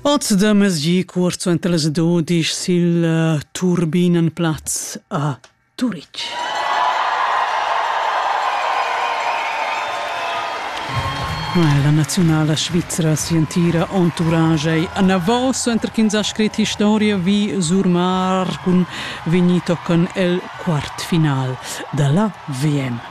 Oz da mesgi cuort suenter las dudisch sil uh, Turbinenplatz a Turitg. La naziunala svizra sientira entourage ei anavos suenter ch'ins ha scrit historia vi Surmar cun vegnir tochen el quart final dalla VM.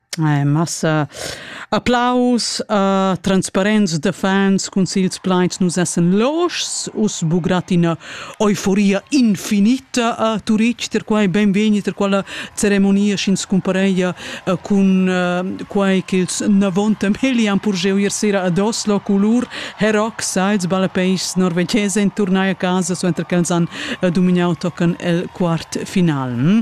Eh, massa applaus a transparents da fans cun sils plaids nus essen loschs us bugrat ina euforia infinita a Turitg ter quai benvegni ter quella ceremonia sch'ins cumpareia eh, cun eh, quai ch'ils navonta melian pur jeu ier sera ad Oslo culur heroc sides balapeigs norvegese in turnai a casa so enter ch'els han eh, dumignau tocan el quart final. Hm?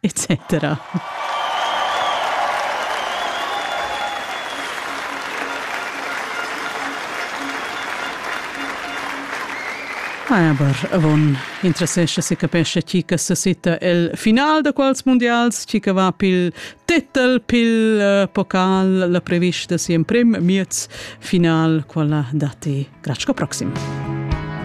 etc. Aber avon interessescha se capescha chi che sesita el final da quals mundials, chi che va pil titel, pil uh, pocal, la prevista si emprem miez final, quella dati. Grazie proxima.